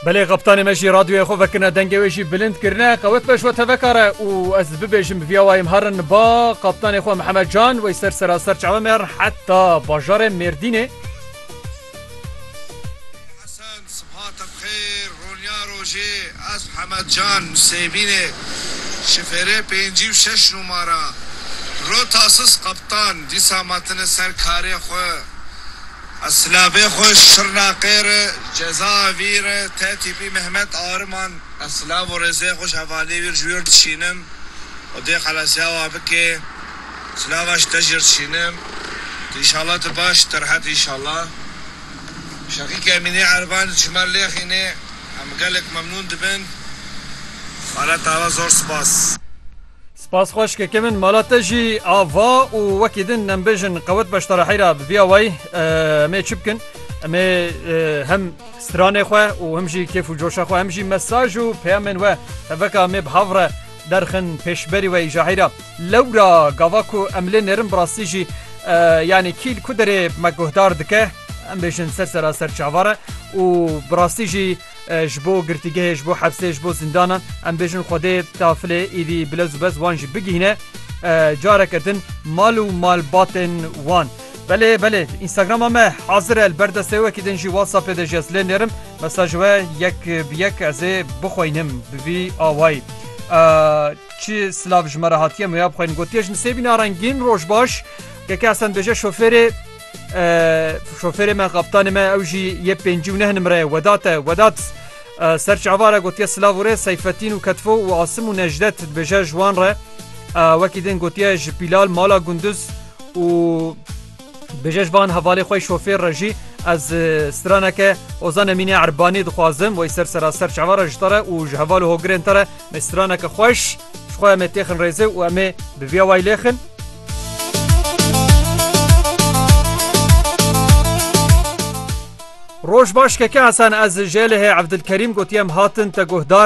Belê xaptanê me jî radyoyê xwe vekirine dengê wê jî bilind kirine qewet be ji we tevekar e û ez bibêjim viya wayê em herin ba xaptanê xwe Mihemed Can wey ser seraser çawe me herin heta bajarê Mêrdînê. Hesen Sibhate bi xêr roniya rojê ez Mihemed Can Sêbînê şifêrê pêncî û şeş nûmara rota sis xaptan dîsa me tine ser karê xwe A silavê xwe Şirnaqê re cezaya vî re tê tîpî Mehmet Ariman. A silav û rêzê xwe ji hevaliyê wî re ji wî re dişînim û dê xelasiya we bike. Silava ji te jî re dişînim. Tu înşallah tu baş î tu rehet î înşallah. Şeqîk Emînê Erivan ji me lêxîne. Em gelek memnûn dibin. Xalet Ava zor spas. Spas xweş ke kevin mala te jî ava û wekî din nembêjin qewet beşdara heyra bi vîya wayî emê çi bikin emê hem stranê xwe û him jî kêf û coşa xwe hem jî mesaj û peyamên we heveka emê bi hav re derxin pêşberî we îja heyra lewra gava ku em lê nêrin bi rastî jî yanî kîl ku derê me guhdar dike em bêjin ser seraser çavar e û bi rastî jî Ji bo girtîgehê, ji bo hepsê, ji bo zindanan em bêjin Xwedê tafilê êdî bilez û bez wan jî bigihîne careke din mal û malbatên wan. Belê belê Instagrama me hazir e li ber destê wekî din jî WhatsAppê de jî ez lê nêrim mesaj we yek bi yek ez ê bixweynim bi vî awayî Çi silav ji me re hatiye me ya bixweynin gotiye ji min sêbîna rengîn roj baş Keke Esen dibêje şofêrê Şofêrê me kaptanê me ew jî yê pêncî û neh nimre ye Wedat e Wedat ser çava re gotiye silav û rê Seyfetîn û Ketfo û Asim û Nejdet dibêje ji wan re wekî din gotiye ji pîlal mala gunduz û dibêje ji van hevalê xwe şofêr re jî ez straneke Ozan Emînê Erbanî dixwazim wey ser sera ser çava re ji te re û ji heval û hogirên te re me straneke xweş Ji xwe em ê têxin rêzê û em ê bi vî awayî lêxin. Roj baş keke Hesen ez ji Elihê Evdilkerîm gotiyem hatin te guhdar.